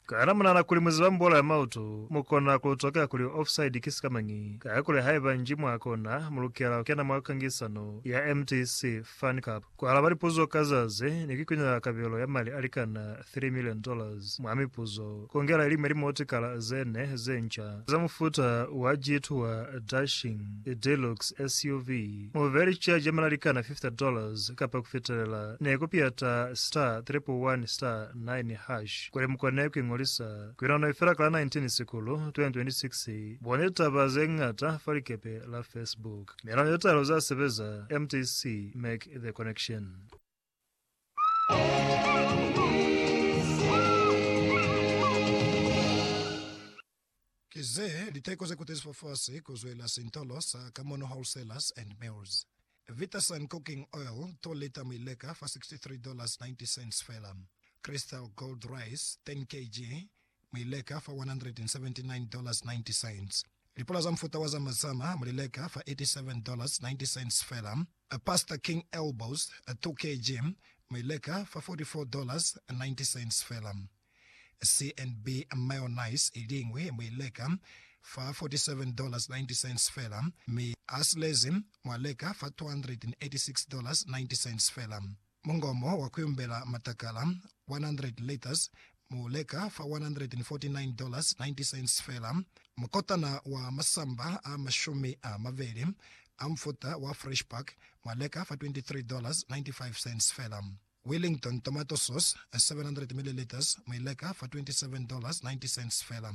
Kana munahana kuli muziba mbola ya mautu? Mukona kulutokela kuli offside ki sikamañi, kakuli haiba nji mwakona, mulukela kukena mwa kangisano ya MTC Fan Cup, kualaba lipuzo ka zazi, ni kuikunela kabelo ya mali alikana three million dollars mwa mipuzo, kongela iliñwi limotikala zene zenca za mufuta wa G-Tour Dashing Deluxe SUV. Mubeli cha jamela likana 50 dollars kapa kufitelela ne ku piyata star triple one star nine hash kuli mukone ku ingolisa. Kuinano ifela kala 19 Sikulu 2026. Boni litaba ze ñata fa likepe la Facebook. Miinano ye talu za sebeza, mtc make the connection. Ki ze liteko ze kutezifwa fasi ku zwela sintolo sa Kamono Wholesalers and Mills. Vitasun Cooking Oil, 2 lita mwi leka fa 63 dollars 90 cents fela. Crystal Gold Rice, 10 kg, mu li leka fa $179.90. Lipula za mufuta wa zamazama mu li leka fa $87.90 fela. Pastor King Elbows, 2 kg, mu i leka fa $44.90 fela. CNB Mayonnaise i liñwi mu i leka fa $47.90 fela, mi a silezi mwa leka fa $286.90 fela. Mungomo wa kuyumbela matakala 100 liters mu leka fa $149.90 fela. Mukotana wa masamba a mashumi a mabeli a mufuta wa Fresh Pack mwa leka fa $23.95 fela. Wellington tomato sauce 700 milliliters mwi leka fa $27.90 fela.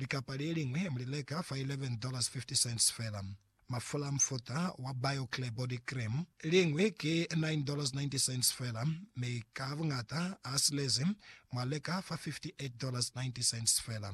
Likapa le liñwi mu li leka fa $11.50 fela. Mafula a mufuta wa BioClear Body Cream, liñwi ki $9.90 fela, mi ka buñata a silezi mwa leka fa $58.90 fela.